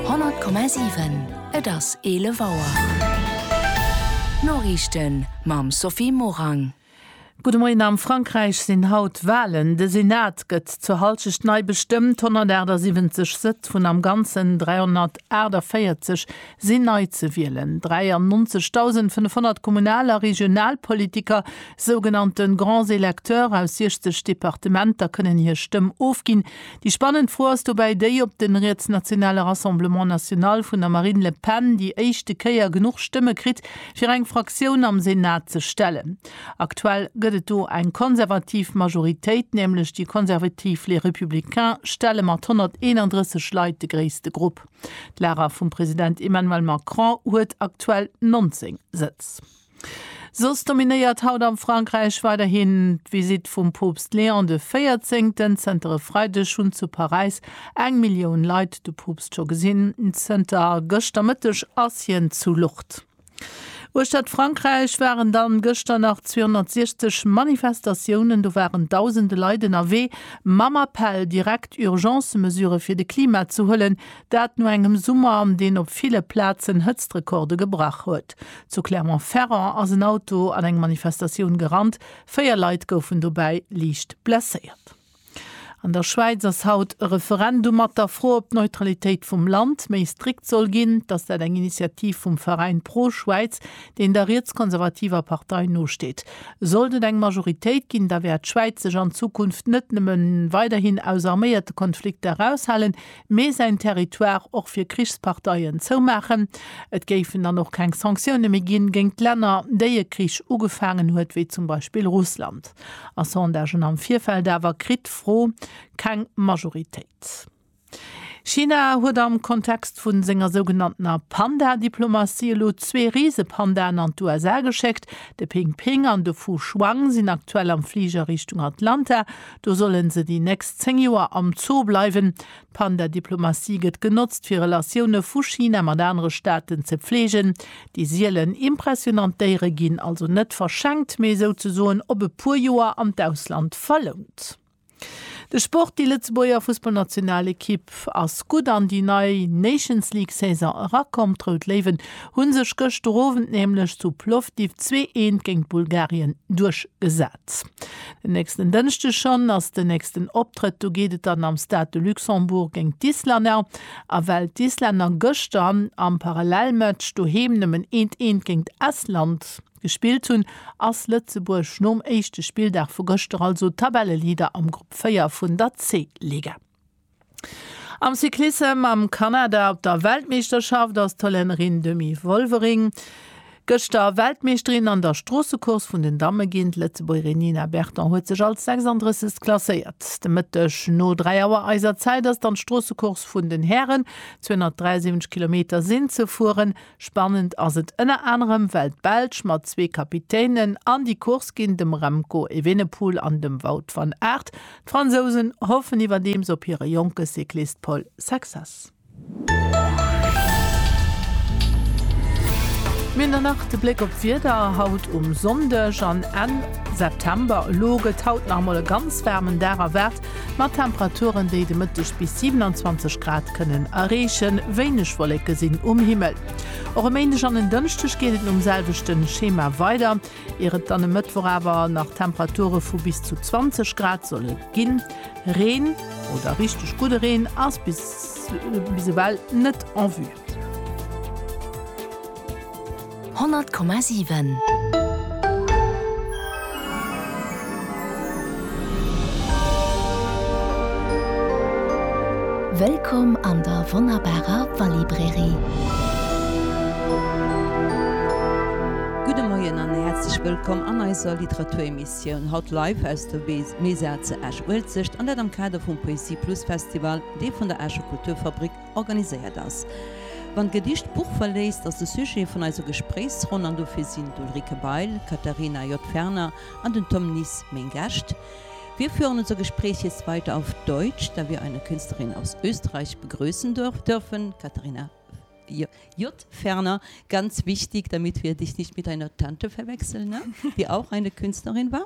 100,7 Et ass 11 Auer. D'Noriichten mam Sophie Morang. Gudde Moien. Am Frankräich sinn haut Walen. De Senat gëtt zur Hallschecht nei bestëmmt. 178 Sëtz vun am Ganzen 348 sinn nei ze wielen. 93.500 Kommunal a Regionalpolitiker, sougenannte Grands électeurs, aus 60 Departementer kënnen hir Stëmm ofginn. Déi spannend Fro ass dobäi déi, ob de rietsnationale Rassemblement National vun der Marine Le Pen déi éischte Kéier genuch Stëmme kritt, fir eng Fraktioun am Senat ze stellen. Aktuell gëtt et do eng konservativ Majoritéit, nämlech déi konservativ Les Républicains stelle mat 131 Leit de gréisste Grupp. D'Lager vum President Emmanuel Macron huet aktuell 19 Sëtz. Soss dominéiert haut am Frankräich weiderhin d'Visitt vum Poopst Léon de Véierzéngten. Zënter e Freideg hunn zu Paräis eng Millioun Leit de Poopst scho gesinn. Zënter gëschter Mëtteg ass hien zu Lourdes. Uechtert Frankräich waren dann gëschter nach 260 Manifestatiounen. Do waren dausende Leit ënnerwee mam Appell, direkt Urgence-Mesurë fir de Klima ze huelen. Dat no engem Summer, deen op ville Plazen Hëtztrekorde gebrach huet. Zu Clermont-Ferrand ass en Auto an eng Manifestatioun gerannt, véier Leit goufen dobäi liicht blesséiert. An der Schwäiz ass haut e Referendum mat der Fro, ob d'Neutralitéit vum Land méi strikt soll ginn. Dass dat eng Initiativ vum Veräin Pro-Schwäiz, deen der rietskonservativer Partei nosteet. Sollt et eng Majoritéit ginn, da wäert d'Schwäiz sech an Zukunft net nëmme weiderhin aus arméierte Konflikter eraushalen, Mee säin Territoire och fir Krichsparteien zoumaachen. Et géifen dann och keng Sanktioune méi ginn géingt Länner, déi e Krich ugefaangen huet, wéi zum Beispill Russland. A Sondagen am Virfeld awer kritt d'Fro keng Majoritéit. China huet am Kontext vun senger sougenanntener Panda-Diplomatie elo zwee Risepandaen an d'USA geschéckt. De Ping Ping an de Fu Shuang sinn aktuell am Fliger Richtung Atlanta. Do solle se déi nächst 10 Joer am Zoo bleiwen. D'Panda-Diplomatie gëtt genotzt, fir Relatioune vu China mat anere Staaten ze pfleegen. Déi sielen, impressionant Déiere ginn also net verschenkt, mee souzesoen op e puer Joer an d'Ausland verlount. De Sport, Déi Lëtzebuerger Fussballnationalekipp ass gutt an déi nei Nations-League-Saison erakomm. D'Rout Léiwen hu sech gëschter Owend nämlech zu Plovdiv zwee Eent géint Bulgarien duerchgesat. Den nächsten Dënschdeg schonn ass den nächsten Optrëtt. Do geet et dann am Stade de Luxembourg géint d'Islänner. A well d'Islänner gëschter am Parallelmatch doheem nëmmen eent eent géint Estland gespillt hunn, ass Lëtzebuerg nom éischte Spilldag vu gëschter also Tabelleleader am Grupp 4 vun der C-Liga. Am Cyclissem am Kanada op der Weltmeeschterschaft ass d'Hollännerin Demi Wolvering gëschter Weltmeeschterin an der Stroossecourse vun den Damme ginn. D'Lëtzebuergerin Nina Berton huet sech als 36. klasséiert. De Mëtteg no 3 Auer eiser Zäit ass dann d'Stroossecourse vun den Hären, 273 Kilometer sinn ze fueren. Spannend ass et ënner anerem, well d'Belsch mat zwee Kapitänen an déi Course ginn, dem Remco Evenepoel an dem Wout van Aert. D'Fransousen hoffen iwwerdeems op hire jonke Cyclist Paul Saxas. Mir hunn dann nach de Bléck op d'Wieder haut um Sonndeg an Enn September. Elo gëtt haut nach emol e ganz waarmen Dag erwaart, Mat Temperaturen, déi de Mëtteg bis 27 Grad kënnen erreechen, wéineg Wolleke sinn um Himmel. Och e Méindeg an en Dënschdeg geet et nom selwechte Schema weider, ier et dann e Mëttwoch awer nach Temperature vu bis zu 20 Grad solle ginn. Reen, oder richteg gudde Reen, ass bis ewell net en vue. Honnert Komma siwen. Wëllkomm an der wonnerbarer Wallibrairie! Gudde Moien an häerzlech wëllkomm an eiser Literaturemissioun, haut live aus der Mesa ze Esch-Uelzecht, an dat am Kader vum Poesie Plus Festival, dee vun der Escher Kulturfabrik Organiséiert ass. Wann d'Gedicht d'Buch verléisst, ass de Sujet vun eiser Gespréichsronn, an dofir sinn d'Ulrike Bail, d'Katharina J. Ferner an den Tom Nis meng Gäscht. Wir führen unser Gespräch jetzt weiter auf Deutsch, da wir eine Künstlerin aus Österreich begrüßen dürfen, Katharina J. Ferner, ganz wichtig, damit wir dich nicht mit deiner Tante verwechseln, die auch eine Künstlerin war.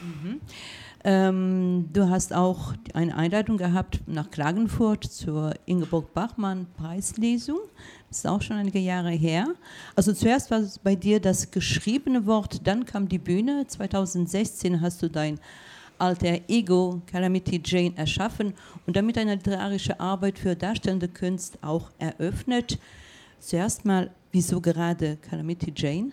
Mhm. Ähm, du hast auch eine Einleitung gehabt nach Klagenfurt zur Ingeborg Bachmann Preislesung. Das ist auch schon einige Jahre her. Also zuerst war es bei dir das geschriebene Wort, dann kam die Bühne. 2016 hast du dein Alter Ego Calamity Jane erschaffen und damit deine literarische Arbeit für darstellende Künst auch eröffnet. Zuerst mal, wieso gerade Calamity Jane?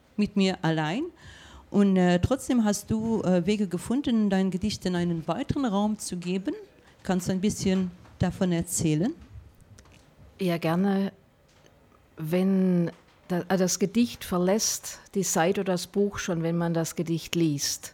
Mit mir allein und trotzdem hast du Wege gefunden, deinen Gedichten einen weiteren Raum zu geben. Kannst du ein bisschen davon erzählen? Ja, gerne. Wenn das Gedicht verlässt die Seite oder das Buch schon, wenn man das Gedicht liest,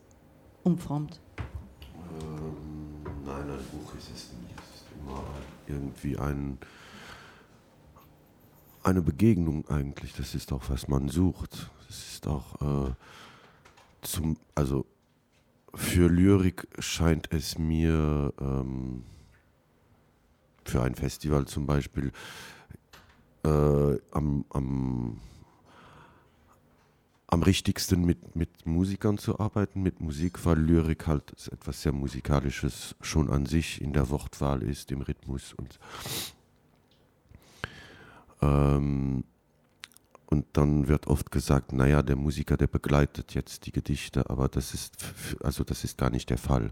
um Front. Nein, ein Buch ist es nie. Es ist immer irgendwie ein, eine Begegnung eigentlich. Das ist auch, was man sucht. Das ist auch zum, also für Lyrik scheint es mir, für ein Festival zum Beispiel, am, am, am richtigsten mit mit Musikern zu arbeiten, mit Musik, weil Lyrik halt etwas sehr musikalisches schon an sich in der Wortwahl ist, im Rhythmus und ähm und dann wird oft gesagt, na ja, der Musiker, der begleitet jetzt die Gedichte, aber das ist also das ist gar nicht der Fall.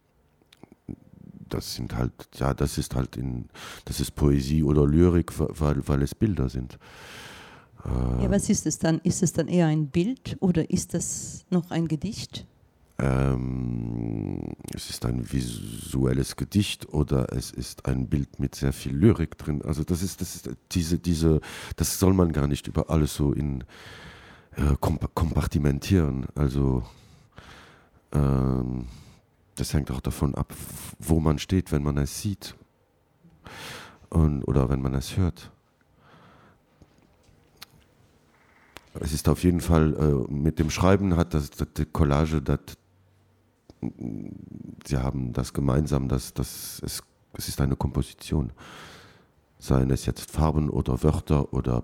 das sind halt, ja, das ist halt in, das ist Poesie oder Lyrik, weil, weil es Bilder sind. Äh, ja, was ist es dann? Ist es dann eher ein Bild oder ist es noch ein Gedicht? Ähm, es ist ein visuelles Gedicht oder es ist ein Bild mit sehr viel Lyrik drin. Also das ist, das ist diese, diese, das soll man gar nicht über alles so in äh, kompartimentieren. Also Das hängt och dervun ab, wou man steet, wenn man es sieht oder wenn man es hört. Es ist auf jeden Fall mit dem Schreiben hat das die Collage dat sie haben das gemeinsam, dass dass es es ist eine Komposition, seien es jetzt Farben oder Wörter oder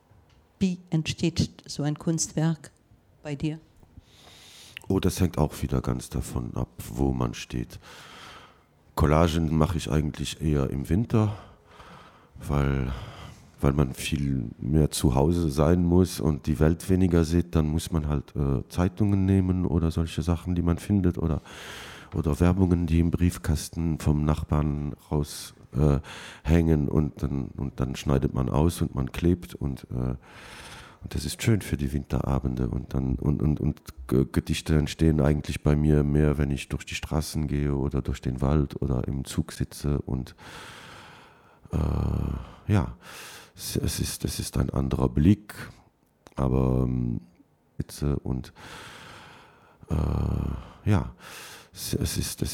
Wéi entsteet sou en Kunstwerk bei dir? Oh, das hängt auch wieder ganz davon ab, wo man steht. Collagen mache ich eigentlich eher im Winter, weil weil man viel mehr zu Hause sein muss und die Welt weniger sieht, dann muss man halt Zeitungen nehmen oder solche Sachen, die man findet oder oder Werbungen, die im Briefkasten vom Nachbarn raus hängen und und dann schneidet man aus und man klebt und und das ist schön für die Winterabende und dann und und und Gedichte entstehen eigentlich bei mir mehr, wenn ich durch die Straßen gehe oder durch den Wald oder im Zug sitze und ja, es es ist es ist ein anderer Blick, aber und ja, es es ist es ist.